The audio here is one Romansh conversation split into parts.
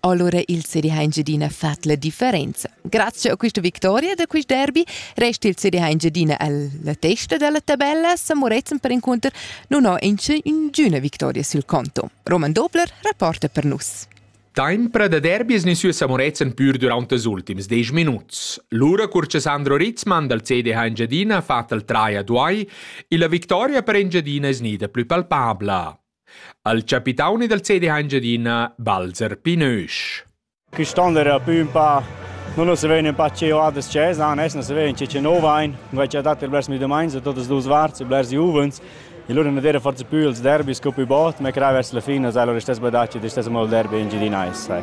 Allora il CD ha Engiadina fatto la differenza. Grazie a questa vittoria da questo derby resta il CD ha Engiadina alla testa della tabella. Sa Moretzen per incontro non ha ninguna vittoria sul conto. Roman Dobler rapporta per nus. Tempra da derbi es nesü a Samurezen pür durant els ultims desch minuts. Lura cur che Sandro Ritzmann dal CDH Engiadina ha fatto il trai a Duai e la victoria per Engiadina es nida plü palpabla. Al capitauni dal cedi ha Engiadina Balzer Pinösch. Quist'on era pü ün pa non se vegn un pa cheu adas chesa, nes non se vegn cice nov ein, vai cha dat blers mi domain, so totas dus varts, blers juvens. E loro non era forse più ils derby sco più bot, ma crai vers la fine sai loro stess badaci, de stess mal derby in Gidinais, sai.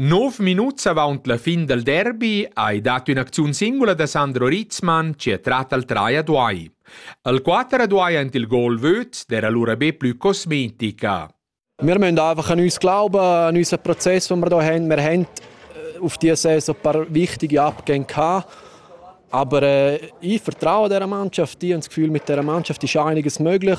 Nov minuts avaunt la fin dal derbi hai dat ün'acziun singula da Sandro Ritzmann chi ha trat al trai a Duai. Al quater a Duai aint il gol vöd d'era lura be plü cosmetica. Wir müssen einfach an uns glauben, an unseren Prozess, den wir hier haben. Wir haben auf diese Saison ein paar wichtige Abgänge gehabt. Aber äh, ich vertraue dieser Mannschaft, ich habe das Gefühl, mit dieser Mannschaft ist einiges möglich.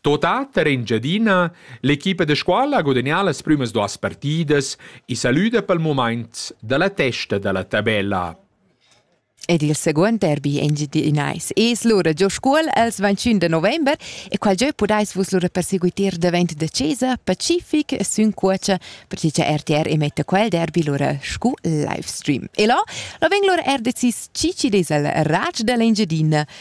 Tota per Engiadina, l'equipa da scuola ha gudagnà las prümas duos partidas e salüda pel mumaint da la testa da la tabella. Ed il seguond derby engiadinais es lura giò Scuol els 21 da november e qual giö pudais vus lura perseguiter davent da chesa, Pacific, sün cuocha, perche cha RTR emetta quel derby lura scu livestream. E là, là vegn lura er decis chi chi'd es il rach da l'Engiadina.